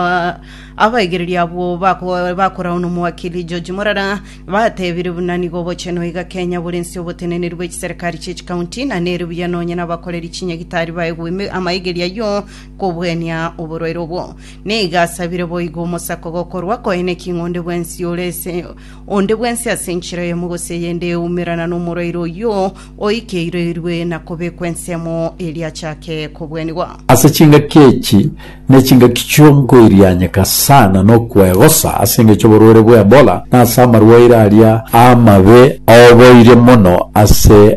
Ah, abaigereria abwo bako- bakorauna omowakili George Morara batebire buna nigo obochenu iga Kenya borense oboteneneri bwe chiserikari chie chikaunti na nere buya nonye nabakoreri chinyagitari baegwe ime- amaigeri ayio kobwenia oborwaire obwo. Nigo asabire boigo omosako gokorwa koeneki ng'onde bwensi ore ase onde bwensi ase enchera eyemo gose eyende eumerana nomorwaire oyio Oikeiroirwe na kobekwa ensemo eria achake kobwenigwa. Ase chingaki echi ne chingaki chionkoirianyeka sana nokwegosa ase engecho oborwere bwa Ebola na ase amarwaire aria amabe aoboire mono ase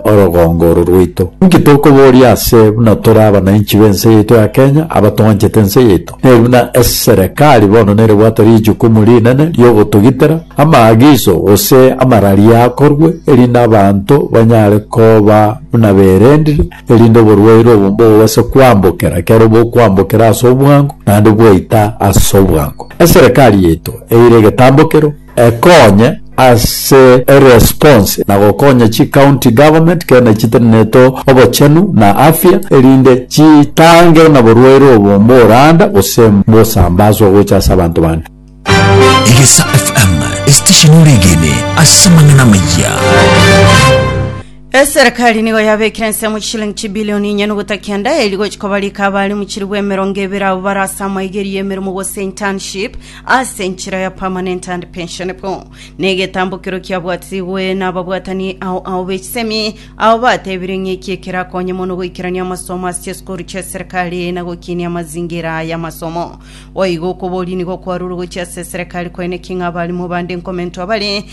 orogongo oro rwaito. Inki tokoboria ase buna tore abanainchi b'ense yaito ya Kenya abatwanchete ense yaito? Nere buna eserekari bono nerebwate richukumu rinene ri'ogotogitera amaagiso gose amararia akorwe, erinde abanto banyare koba buna berendire, erinde oborwaire obo mbobase kwambokera kera obokwambokera ase obwango, naende bwaita ase obwango. Eserekari yaito eire egetambokero. ekonye ase eresponse na gokonya chi county government kera nechiteneneto obochenu na afya erinde chitange na borwaire obo mboranda gose mbosambaswa gocha ase abanto bande. Egesa FM, esitesheni oregene ase amang'ana amayia. Eserekari nigo yabekire ensemo chishilingi chibilioni inye nuguta kenda eria gochia kobarika abarimu chilifu emerongo ebere abo barase amaigerio y'emeremo gose internship Ase enchera ya Permanent and Pensionable, na egetambokero kiabwatigwe nababwatani ao ao b'echisemi, abo batebire ng'a eki ekerakonye mono goikerania amasomo ase chisukuru chi'eserekari na gokinia amazingira y'amasomo. Boigo okoboria nigo kwarure gochia ase eserekari koeneki ng'a abarimo bande nkomentwa bare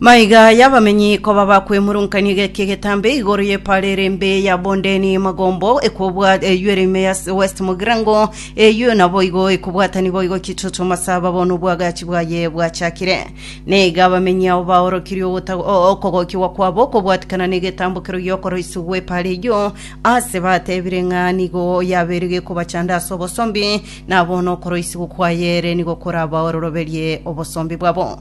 Maiga y'abamenyi koba bakwemurunkanio egeki egetambe igoro y'epara ere embe ya bondeni magombo ekobwa eywo ere ime ya s- west mogirango eywo nabo igo ekobwatanigwa boigo ekitutu masaba bono obwagachi bwaye bwachakire naiga abamenyi abo baorokirie ogota- o- okogokigwa kwabo okobwatikana negetambo kerogi gi'okoroiswa gw'epara eywo ase batebire ng'a nigo yabeire gekobachanda ase obosombi na bono okoroisigwa kwaye ere nigo korabaororoberie obosombi bwabo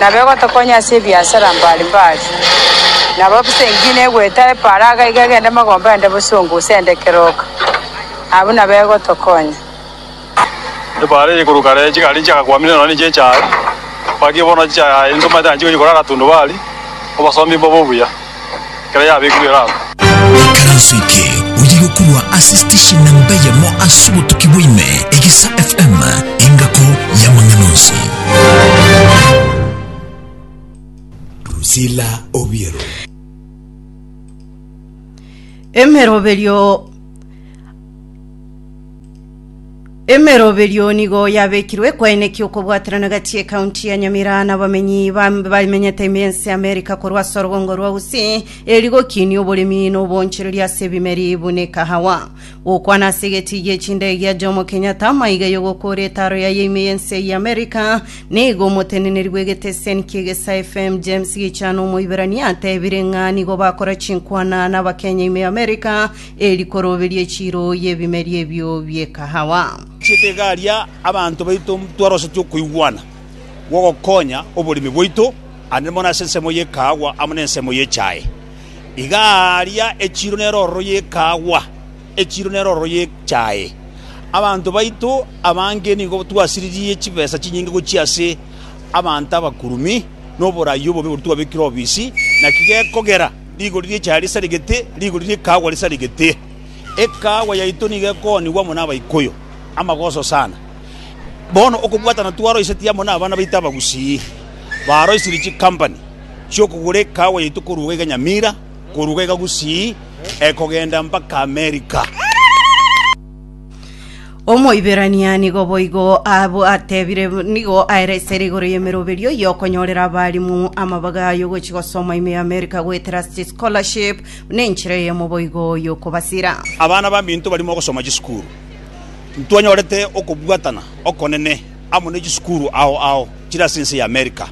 Nabo egotokonya ase ebiasara mbare mbare. Nabo bosa eng'ina egwete eparaaga iga egende magomba aende bosongo gose aende keroka. Abwo nabo egotokonya. Epaara eye koruka are chigari nchiagakwamire nonya niche echaye, baki bono chichaye aye intwe manyete nchikonya korara tundubari, obosomi mbobe obuya. ekero yabekirwe erabu. Ekaranso eke oyio yokorwa ase station namba eyemo ase obotuki bwa ime, Egesa FM, engako y'amang'ana onsi. Drusilla Obiero. Emeroberio Emeroberio nigo yabekirwe ekwaeneki okobwaterana gati ekaunti ya Nyamira na bamenyi bamenyete ense Amerika korwa ase orobongo rwa Usi eri gokinia oboremi na obonchereri ase ebimeri buna ekahawa. Gokwana ase egeti gia echindege gia Jomo Kenyatta maiga yogokora etaro yaye ime y'ense ya Amerika nigo omoteneneri bw'egeteseni kia Egesa FM James Gichana Omoiberania atebire ng'a nigo bakora chinkwana na Abakenya ime Amerika Eri koroberie echiiro y'ebimeri ebio bi'ekahawa. Chitikaria abanto baito ntwarosetie okoigwana gw'ogokonya oboremi bwaito, aande mono ase ensemo y'ekahawa amo nensemo y'echae. Iga aaria echiiro nere ororo y'ekahawa, echiiro nere ororo y'echae. Abanto baito abange nigo twasiririe chibesa chinyinge gochia ase abanto abakurumi, na oborai obobe oboria twabekire obisi, naki gekogera. Rigori ri'echaye risarigete, rigori ri'ekaagwa risarigete. Ekaagwa yaito nigo ekoonigwa amo n'Abaikuyu, amagoso sana. Bono okobwatana twaroisetie amo n'abana baito Abagusii, baroisirie chikampani chi'okogora ekaagwa yaito korwa iga iga Nyamira, korwa iga iga Gusii, ekogenda mpaka Amerika. Omoiberania nigo boigo ateebire nigo aere esere igoro y'emeroberio y'okonyorera abarimu amabaga y'ogochia gosoma ime y'America goetera ase scholarship buna enchera eyemo boigo y'okobasira. Abana baminto barimo ogosoma chisukuru, ntwanyorete okobwatana okonene amo ne chisukuru ao ao chire ase ense y'America.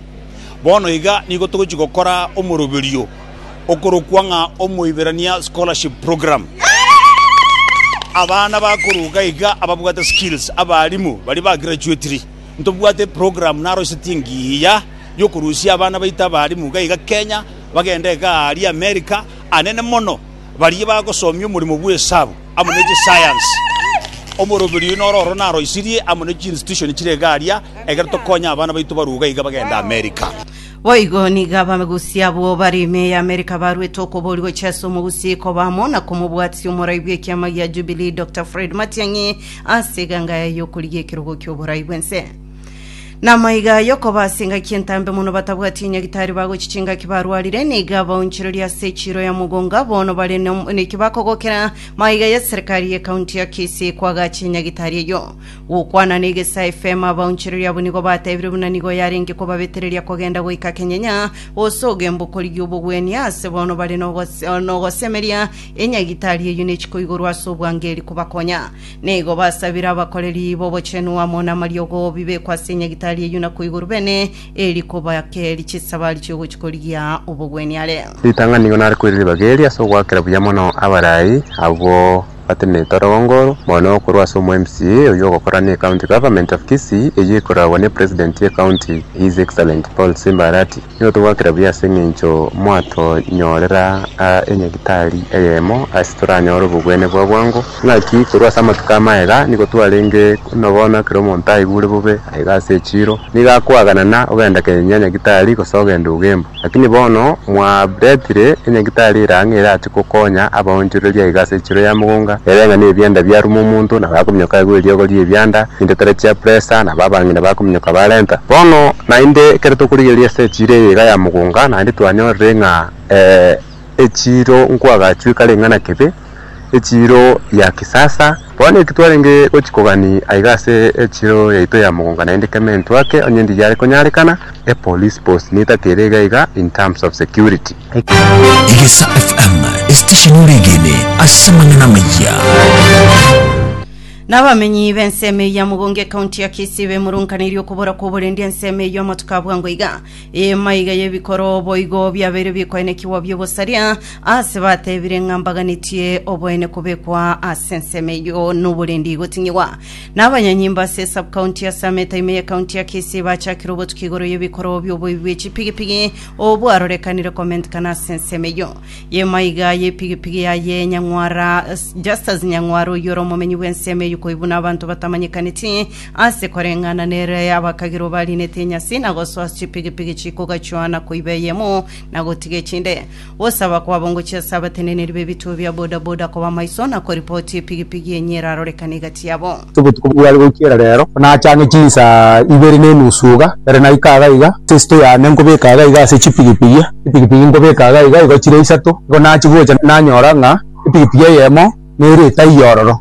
Bono iga nigo togochia gokora omoroberio okorokwa ng'a Omoiberania Scholarship Program. Abana bakoruga iga ababwate skills abarimu baria bagrachuetiri. Ntobwate eprogramu naroisetie engiya yokorusia abana baito abarimu iga iga Kenya bagende iga aria America, anene mono baria bagosomia omoremo bw'esabu amo ne chisayansi. Omoroberi oyo noro oro naroisirie amo ne chiinstitution chire iga aria ekero tokonya abana baito baruga iga bagende America. Boigo nigo abagusia bw'obare ime y'Amerika baruete okoboria gochia ase omogusia ikoba amo na komobwatisia omorai bw'ekiama gia Jubilee Dr Fred Matiang'i ase eganga yaye y'okorigia ekerogo ki'oborai bw'ense. Namaiga aye okoba ase engaki entambe mono batabwati enyagitari bagochi chingaki barwarire nigo abaonchoreria ase echiro ya mogonga bono bare nom- neki bakogokera maiga ya serikari ye county ya Kisii kwagacha enyagitari eyo Gokwana negesa efemo abaonchoreria abwo nigo batebire buna nigo yarenge kobabetereria kogenda goika kenyenya gose ogemba okorigia obogwenia aase bono bare nogose- nogosemeria enyagitari eyio nechikoigorwa ase obwangeri kobakonya. Nigo basabire abakoreri b'obochenu amo namariogo bibekwe ase enyagitari eyio na koigorwa bene eri kobake eri chisabari chiogochi korigia obogwenia are. Ritang'ani nigo nare koirira ribaga eri ase ogoakera buya mono abarai abwo. Atenete orogongoro mono korwa ase omo MCA oyio ogokora ne County Government of Kisii eyio ekoragwa ne President ye County His Excellent Paul Simba Arati. Nigo togwakera buya ase eng'encho mwatonyorera enyagitari eyemo ase toranyore obogwene bwa bwango. Naki korwa ase amatuko amaye iga nigo twarenge buna bono ekero omonto aigure bobe aiga ase echiro nigo akoaganana ogenda kenya nyagitari gose ogenda ugembu. Lakini bono mwaretire enyagitari ere ang'e erache gokonya abaonchoreria aiga ase echiro ya mogonga, ere ng'a nebianda biaruma omonto, nabo akominyoka aigwe eriogo ri'ebianda, chintetera chia presa, nabo abang'ina bakominyoka barenta. Bono naende ekero tokorigereria ase echiro eye iga ya mogonga, naende twanyorire ng'a ee. echiiro nkwagachweka ring'ana kebe, echiiro ya kisasa. Bono eki twarenge gochia kogania aiga ase echiiro yaito ya Mugunga naende keme entwake onye ndi yare konyarekana, a police post nieta kere iga iga in terms of security. Egesa FM, esitesheni oregene ase amang'ana amaya. Nabamenyi b'ensemo eye ya Mugunga ekaunti ya Kisii bemurunkaneirie okobora kw'oborendi ensemo eyio amatuko abwango iga. Emaiga y'ebikoroo boigo biabeire bikoenekigwa bi'obosaria, aase batebire ng'a mbaganetie oboene kobekwa ase ensemo eyio noborendi igoting'igwa. Na abanyanyimbo ase esub-county ya Summit ime ye county ya Kisii bachakire obotuki igoro y'ebikoroo bi'oboibi bwe chipigipigi obwarorekanire komentikana ase ensemo eyio. Y'emaiga y'epigipigi yaye Nyang'wara Justus Nyang'wara oyio ore omomenyi bw'ensemo eyio koibuna abanto batamanyekaneti Ase koreng'ana nere abakagirwa barinete enyasi na gosoa chipigipigi chikogachwana koiba eyemo na gotiga echinde. Gosaba kwabo ngochia ase abateneneri b'ebituo bia bodaboda koba maiso na koripoti epigipigi enye erarorekane egati yabo. Ase obotuko bware goichiera reero, nachang'e chinsaa ibere na enusu iga, ere naika iga iga, ase esito yane nkobeka iga iga ase chipigipigi, chipigipigi nkobeka iga iga igo chire isato. Igo nachia gocha nanyora ng'a epigipigi eyemo nere etaiyo ororo.